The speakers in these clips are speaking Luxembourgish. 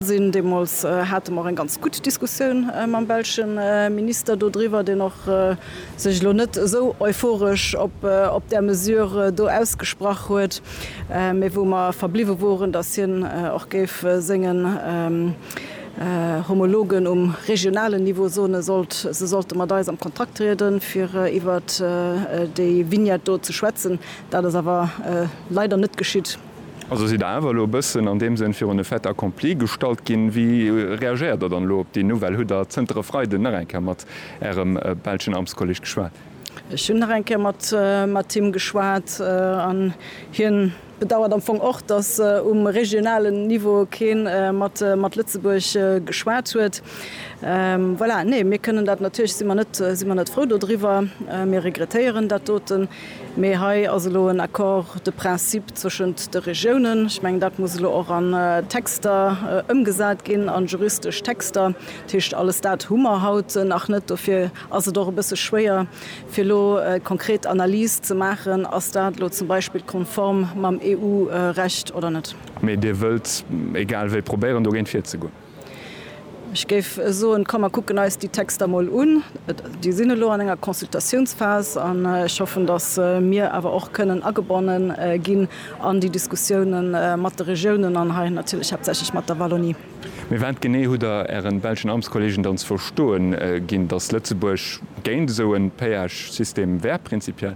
Deemools hate mer eng ganz gutt Diskussioun mam belsche Minister dodriwwer, deen och sech elo net esou euphoresch op där Mesure do ausgesprach huet, mee wou mer verbliwwe woren, datt hien och géif sengen Homologen um regionalen Niveau soene sollt, se sollte mat eis am Kontakt trieden, fir iwwert déi Vignette do ze schwätzen. Dat ass awer leider net geschitt. Also sidd Der awer elo e bëssen an deem Sënn virun de Fait accompli gestallt ginn. Wéi reagéiert Der dann elo op déi Nouvelle? Hutt Der zënter e Freiden nach eng Kéier mat Ärem belschen Amtskolleg geschwat? Ech hunn nach eng Kéier mat him geschwat an hie bedauert am Fong och, datt um regionalen Niveau kee mat Lëtzebuerg geschwat huet. Voilà, nee, mir kënnen dat natierlech, si mer net frou dodriwwer, mir regrettéieren dat doten. Mee hei ass elo en Accord de principe zwëschent de Regiounen. Ech mengen, dat muss elo och an Texter ëmgesat ginn, an juristesch Texter. Dat heescht, alles dat hu mer haut nach net. Dofir ass et och e bësse schwéier, fir elo konkret Analyse ze maachen, Ass dat elo zum Beispill konform mam EU-Recht oder net? Mee Dir wëllt egal wéi probéieren, dogéint virzegoen? Ech géif soen, komm mer kucken eis déi Texter mol un. Déi sinn elo an enger Consultatiounsphas an ech hoffen, datt mir awer och kënnen agebonne ginn an déi Diskussioune mat de Regiounen an hei natierlech haaptsächlech mat der Wallonie. Mee wat genee hutt Der Ären belschen Amtskollegen dann ze verstoe ginn, datt Lëtzebuerg géint esou e Péage-System wär prinzipiell?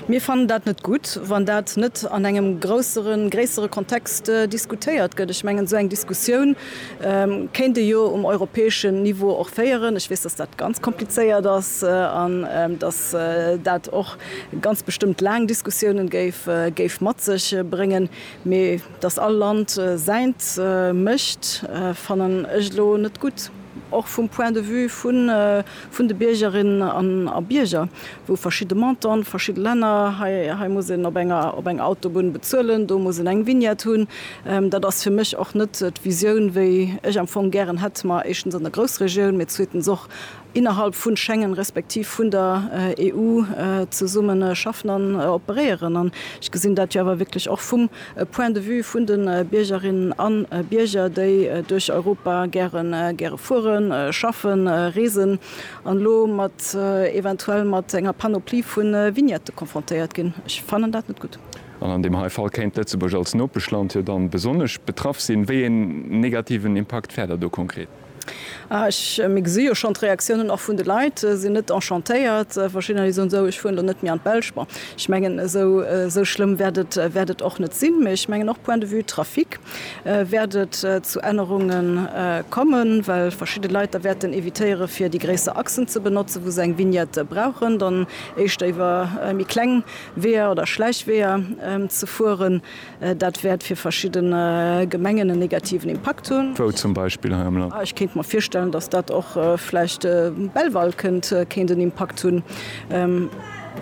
Mir fannen dat net gutt, wann dat net an engem grousseren, gréissere Kontext diskutéiert gëtt. Ech mengen, esou eng Diskussioun kéint ee jo um europäeschen Niveau och féieren. Ech weess, dass dat ganz komplizéiert ass an dass dat och ganz bestëmmt laang Diskussioune géif mat sech bréngen, mee. Dass all Land säint mécht, fannen ech elo net gutt, och vum Point de vue vun de Biergerinnen a Bierger, wou verschidde Montanten, verschidde Länner, hei muss een op enger Autobunn bezuelen, do muss een eng Vignette hunn. Dat ass fir mech och net d'Visioun, wéi ech am Fong gären hätt, ma éischtens an der Groussregioun, mee zweetens och innerhalb vun Schengen respektiv vun der EU zesummen schaffen an operéieren. An ech gesinn dat jo awer wierklech och vum Point de vue vun de Biergerinnen a Bierger, déi duerch Europa gären, gäre fueren, schaffen, reesen an elo mat, eventuell mat enger Panoplie vu Vignette konfrontéiert ginn. Ech fannen dat net gutt. An an deem hei Fall kéint d'Lëtzebuerg als Nopeschland jo dann besonnesch betraff sinn. Wéi een negativen Impakt wär da do konkret? Mir gesi jo schonn d'Reaktiounen och vun de Leit sinn net enchantéiert. Verschiddener déi soen, sou ech fueren elo net méi an d'Belsch. Bon, ech mengen esou schlëmm wäert et och net sinn. Mee ech mengen och point de vue Trafic wäert et zu Ännerunge kommen, well verschidde Leit da wäerten evitéiere fir déi gréisser Achsen ze benotzen, wou se eng Vignette brauchen, dann éischter iwwer méi kleng Weeër oder Schläichweeër ze fueren. Dat wäert fir verschidden Gemengen en negativen Impakt hunn. Wou zum Beispill hei am Land? Ech kéint mer virstellen, datt dat och vläicht Belval kënnt, kéint en Impakt hunn.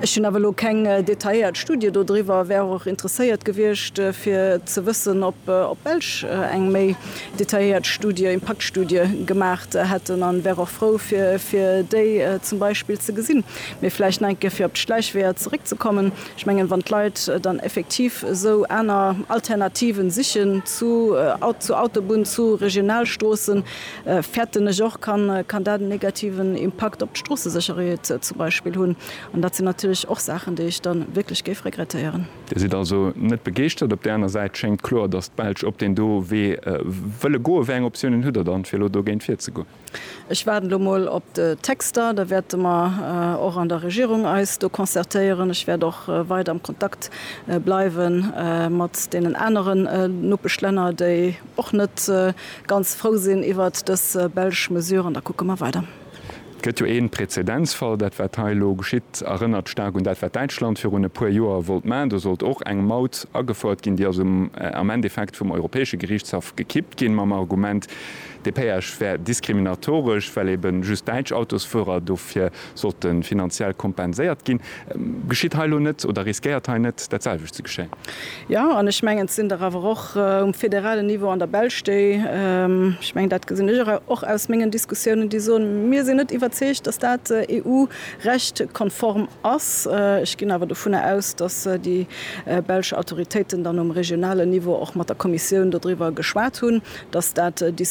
Ech hunn awer elo keng detailléiert Studie do driwwer, wär och interesséiert gewiescht fir ze wëssen, ob d'Belsch eng méi detailléiert Studie, Impaktstudie gemaach hätten an wär och frou fir déi zum Beispill ze gesinn. Mee vläicht nach eng Kéier fir op d'Schläichweeër zeréckzekommen. Ech mengen, wann d'Leit dann effektiv esou aner Alternativen sichen zu Autobunn, zu Regionalstroossen, fäerten ech och, kann dat en negativen Impakt op d'Stroossesécherheet zum Beispill hunn. An dat sinn natierlech och Saachen, déi ech da wierklech géif regrettéieren. Dir sidd also net begeeschtert. Op där aner Säit schéngt kloer, datt d'Belsch op deen do Wee wëlle goen. Wéi eng Optiounen hutt Der dann, fir elo dogéint virzegoen? Ech waarden elo mol op de Texter. Da wäerte mer och an der Regierung eis do concertéieren. Ech wäert och weider am Kontakt bleiwe mat deenen aneren Nopeschlänner, déi och net ganz frou sinn iwwert dës belsch Mesure. An da kucke mer weider. Et gëtt jo ee Prezedenzfall. Dat, wat hei elo geschitt, erënnert staark un dat, wat Däitschland virun e puer Joer wollt maachen. Do sollt och eng Maut agefouert ginn. Déi ass am Endeffekt vum Europäesche Geriichtshaff gekippt ginn mam Argument, Dee Péage wär diskriminatoresch, well eben just däitsch Autosfuerer dofir sollte finanziell kompenséiert ginn. Geschitt hei elo net oder riskéiert hei net dat selwecht ze geschéien? Jo, an ech mengen, et sinn der awer och um federalen Niveau an der Belsch, déi, ech mengen, dat gesinn ech och aus mengen Diskussiounen, déi soen, mir sinn net iwwerzeegt, datt dat EU-Recht-konform ass. Ech ginn awer dovunner aus, datt déi belsch Autoritéiten dann um regionalen Niveau och mat der Kommissioun dodriwwer geschwat hunn, datt dat diskutéiert